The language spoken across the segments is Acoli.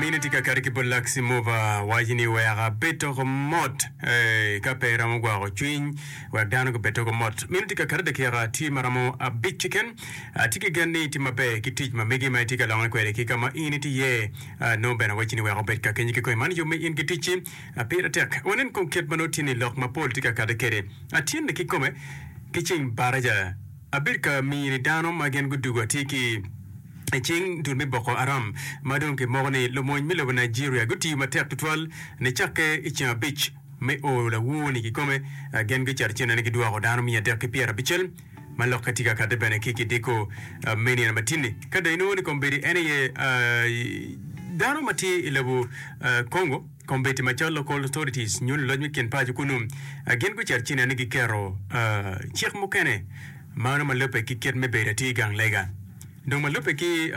Mine tye ka kati ki bot lak Simova, waco ni wek abed toko mot ka pe iromo gwoko cwiny wek dano gubed toko mot. Mine tye ka kati dakika tye ma romo abic keken. Atye ki gen ni itye maber ki tic ma megi ma itye ka lokke kwede ki ka ma in itye iye. Nongo bene waco ni wek obed ka kenyi kikoi man yub ma in ki ticci pire tek. Wanen kong kit ma nongo tye ni lok mapol tye ka kati kwede. Atyene kikome ki cing baraja. Abedo ka mini dano ma gin gudugo atir ki i cing dul me Boko Haram ma dong kimoko ni lumony me lobo Nigeria gutiyo matek tutwal nicakke i ceng abic me o lawor ni kikome gin gicato cene ni gidwoko dano miya adek ki pyera abicel ma lokke tye ka kate bene ki kidiko me nino matini ka dong inongo ni kombedi en aye dano ma tye i lobo Congo. Kombeddi macol Local Authorities nyo luloc me kin paco kunnu gin gucito ci neno ni giketo cik mukene ma romo alubbe ki kit me bedo atir gang lega dong malubbe ki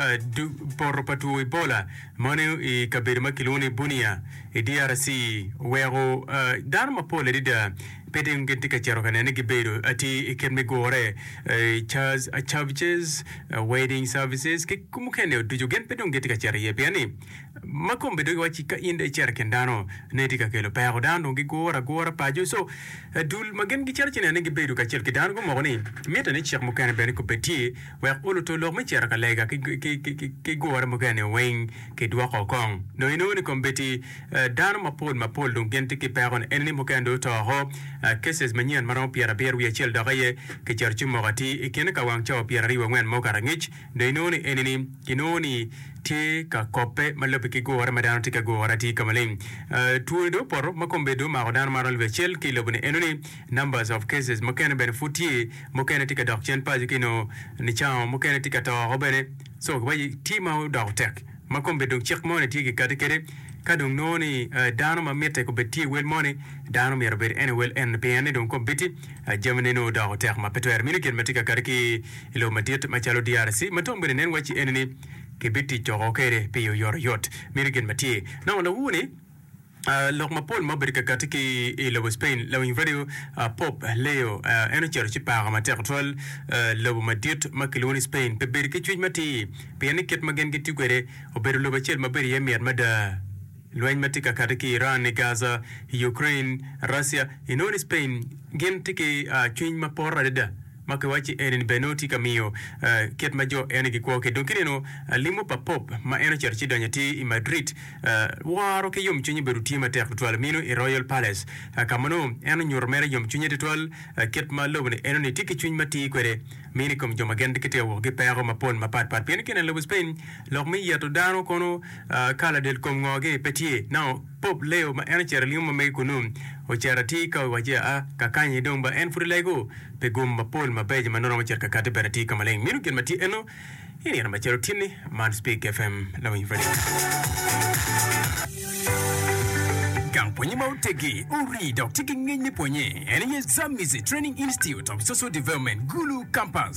poto pa two Ebola ma oneno i kabedo ma kilwongo ni Bunia i DRC oweko dano mapol adada pe dong gitye ka cito ka neno ni gibedo atir i kit me gure Church Services, Wedding Services ki mukene ducu gin pe dong gitye ka cito iye pien ni Ma kome dok iwacci ka in dong icito i kin dano, ne itye ka kelo peko. Dano dong gigure agura paco. Co, dul ma gin gicito ci neno ni gibedo kacel ki dano gumoko ni mitte ni cik mukene bene kubbe tye wek oluto lok me cito ka lega ki gure mukene-ni weng kidwoko kong. Dong inongo ni kombeddi dano mapol mapol dong gin tye ki peko ni enini mukene dong oto woko. Cases manyen ma romo pyerabiro wiye acel doke aye kicito ci omoko atir i kine ka wang cawa pyeraryo wangwen ma okato angec. Dong inongo ni enini kinongo ni tye ka kobbe ma lubbe ki gure ma dano tye ka gure atir ka maleng. Twoni dong opoto ma kombe dong omako dano maromo alip acel ki i lobo ni enoni numbers of cases mukene bene pud tye mukene tye ka dok cen paco ki nongo nicango mukene tye ka toko bene so giwaci tye ma odoko tek ma kombe dong cik moni tye kikati kede ka dong nongo ni dano ma mitte kobed tye wel moni dano myero obed en ewel enoni pien ni dong kombe bit Jami neni odoko tek ma pe twero mini gin ma tye ka kati ki i lobo madit macalo DRC ma twam bene nen waci enini kibitic woko kede pi oyotoyot mini gin ma tye. Nongo lawu ni lok mapol ma obedo ka kati ki i lobo Spain, lawiny radio Pope Leo en ocito ci pako matek tutwal lobo madit ma kilwongo ni Spain pi bedo ki cwiny matir pien ni kit ma gin gitiyo kwede obedo lobo acel ma bedo iye mit mada. Lweny ma tye ka kati ki Iran i Gaza, i Ukraine, Russia, i noni Spain gin tye ki cwiny ma poro adada ma ki wacci eni ni bene nongo tye ka miyo kit ma jo eni gikwo ki dong ki neno limo pa Pop ma en ocito ci donyo atir i Madrid woro ki yom cwiny obedo tye matek tutwal mino i Royal Palace ka ma nongo en onyuto mere yom cwinye tutwal kit ma lobo ni enoni tye ki cwiny ma tir kwede mino i kom jo ma gin gitye ka wok ki peko ma pol ma pat pat pien ki neno lobo Spain Lok me yeto dano kono ka ladel kom ngo-gi pe tye. Nongo Pope Leo ma en ocito limo ma mege kunu, ocito atir ka owaco aa ka kany-nyi dong ba en pud lego pi gum mapol mabeco ma nongo romo cito ka kati bene atir ka maleng. Minu gin ma tye eno i nino macalo tyen-ni, man Speak FM Lawiny Radio. Gang pwonye ma oteggi, orii dok tye ki ngec me pwonye en aye Zamizi Training Institute of Social Development, Gulu Campus.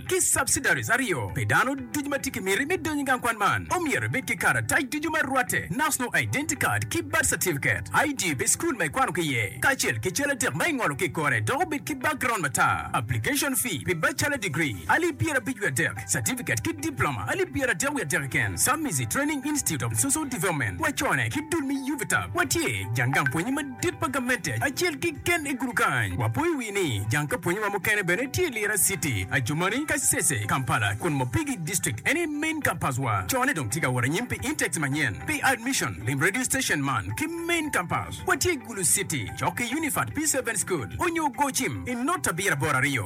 ki subsidiaries aryo pi dano ducu ma tye ki miti me donyo i gang kwan man. Omyero ibed ki karatac ducu ma rwatte, National Identity Card ki Birth Certificate, ID pi school ma ikwano ki iye, kacel ki cal adek ma ingolo ki i kore dok obed ki background matar. Application fee pi bachelor degree, alip pyera abic wiye adek, certificate ki diploma, alip pyera adek wiye adek keken, Submizi Training Institute of Social Development, wacone ki dul me UVTAB, watye jang gang pwonye madit. Tit pa gamente acel kiken i gudu kany. Wapo i wi ni jang ka pwonye wa mukene bene tye i Lira city, Adjumani, Kasese, Kampala kun Mopigi district en aye main campus wa. Co ne dong tye ka wot anyim pi intakes manyen pi admission. Lim radio station man ki main campus. Watye i Gulu city cok ki Unifat P-Seven school onyo gocim i not abiro aboro aryo.